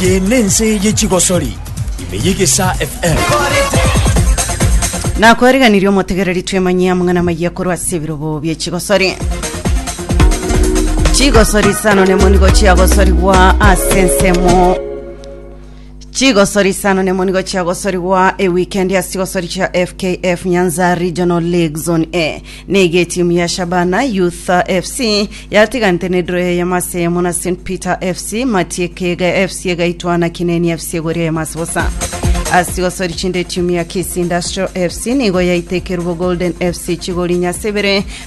Eye nense ye chigosori ime yegesa FM. nakwareganirie omotegereri twemanyia mong'ana mayia korwa ase ebirobo bie chigosori chigosori sano nemonigo chiagosorigwa ase ensemo Chigosori isano nemo nigo chiagosorigwa ewikendi ase chigosori chia FKF Nyanza Regional League Zone A. Nigo etimu ya Shabana Youth FC yatiganete nedro eyemo ase eyemo na St Peter FC, Matiekega FC egaitwa na Kineni FC egori eyemo ase bosa. Ase chigosori chinde etimu ya Kisii Industrial FC nigo yaitekerwe Golden FC chigori inye ase ibere,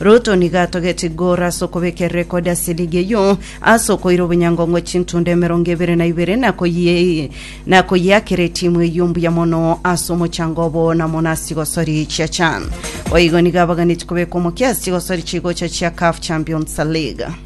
Ruto nigo atogetie Gor ase okobeka erekodi ya siligi eyio ase okoira obonyangongo chintundo emerongo ebere na ibere na koyi- na koyiakera etimu eyio mbuya mono ase omochango obo na mono ase chigosori chia chan. Boigo nigo abaganetie kobeka omokia ase chigosori chigocha chia CAF Champions League.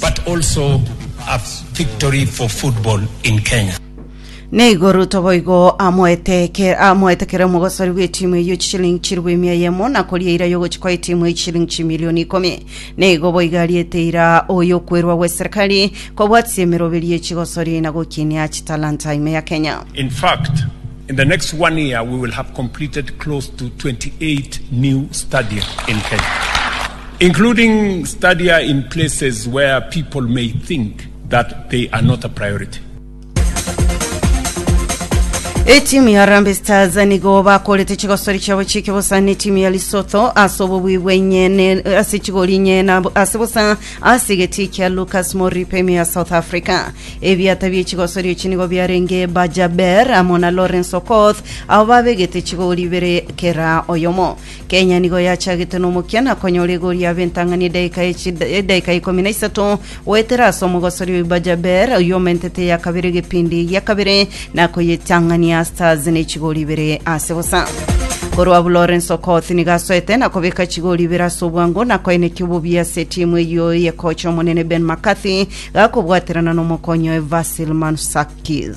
but also a victory for football in Kenya. Neigo Ruto boigo amoeteke- amoetekere omogosori bw'etimu eyio chishilingi chilifu ime eyemo, na koria eira y'ogochikwa etimu eyio chishilingi chimilioni ikomi. Neigo boigo ariete eira oy'okwerwa gw'eserikali, kobwatisia emeroberi ye chigosori, na gokinia chitalanta ime ya Kenya. In fact, in the next one year, we will have completed close to 28 new stadium in Kenya. including stadia in places where people may think that they are not a priority. Etimu ya Harambee Stars nigo bakorete chigosori chiabo chi'eke bosa ne timu ya Lesotho ase obobui bwenye ne- ase chigori inye na bo- ase bosa ase egeti kia Lucas Moripe ime ya South Africa. Ebiata bie chigosori echi nigo biarenge Bajaber amo na Lawrence Okoth abo babegete chigori ibere kera oyomo. Kenya nigo yachagete nomokia na konyora egori ya Bentang'ani edaika ya chida- edaika ya ikomi na isato goetera ase omogosori o Ibajaber oyio omentete eya kabere egepindi gia kabere na koyetang'ania Stars ne chigori ibere ase bosa. Korwa abwo Lawrence Okoth nigo asoete na kobeka chigori ibere ase obwango na koenekia obobe ase etimu eyio eye kocha omonene Ben McCarthy gakobwaterana nomokonyi oye Vasil Mansakis.